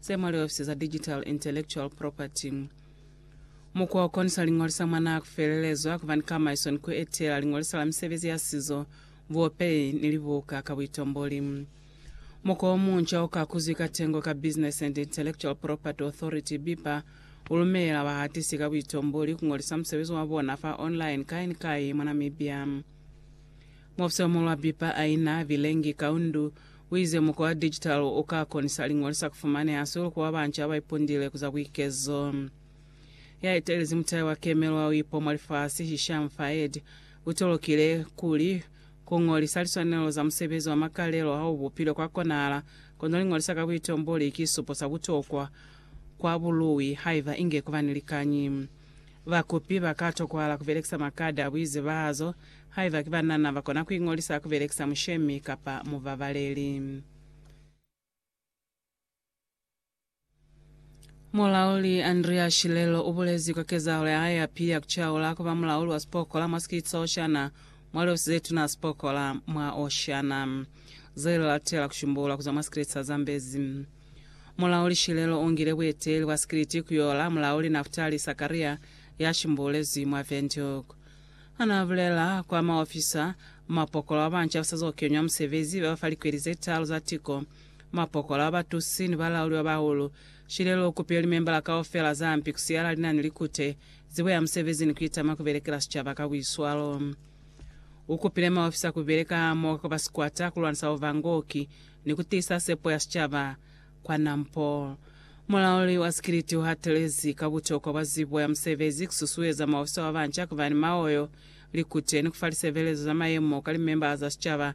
Ze mwa liofisi za Digital Intellectual Property. Mukwa o konisa liñolisa mwa nako felelezwa kuba ni kamaiso ni ku etela liñolisa la misebezi ya sizo, buopeyi, ni libuka ka buitomboli. Mukwa o munca o ka kuzwi ka tengo ka Business and Intellectual Property Authority, BIPA, u lumelela bahatisi ka buitomboli ku ñolisa musebezi wa bona fa online kai ni kai mwa Namibia. Mufsi o mulwa pipa a ina bilengi kaundu uize mukwa wa digital u ka konisa liñoli sa kufumaneha sulu kuba banca ba ipundile ku za buikezo. Ya etelezi mutahe wa kemelo wa uipo mwa lifasi, Hisham Faed, u tolokile kuli, Ku ñolisa liswanelo za musebezi wa makalelo ha u bupilwe kwa konahala, kono liñolisa ka buitomboli ki supo sa butokwa kwa buluwi haiba inge kuba ni likañi. Bakopi ba ka tokwahala ku belekisa makadi a buizebahazo haiba ki banana ba kona ku iñolisa ku belekisa mushemi kapa mubabaleli. Mulauli Andrea Shilelo u bulezi kwa kezahalo ya hae ya pili ya ku caula ku ba mulauli wa sipokola mwa sikiti sa Oceania mwa Liofisi ze Tuna za Sipokola mwa Oceania, ze li latela ku shumbulula ku zwa mwa sikiti sa Zambezi. Mulauli Shilelo ungile bueteli bwa sikiliti kuyola mulauli Naftali Sakaria ya shimbulezi mwa Windhoek. Hana abulela kwa maofisa, mapokola wa banca usazo kenywa musebezi baba fa likweli zetalu za tiko, mapokola wa batusi ni balauli babahulu. Shilelo ukupile limembala kaufela zampi kusiyala linani likute, zibo ya musebezi ni kuitama kubelekela sicaba ka buiswalo. Ukupile maofisa kubeleka hamoho ka kwa sikwata kulwanisa buvangoki ni ku tiisa sepo ya sicaba kwa nampo. Mulauli wa sikiliti u hatelezi ka butokwa bwa zibo ya musebezi, ku susueza maofisa ba banca ku ba ni maoyo, likute, ni ku fa lisebelezo za mayemo ka limemba za sicaba,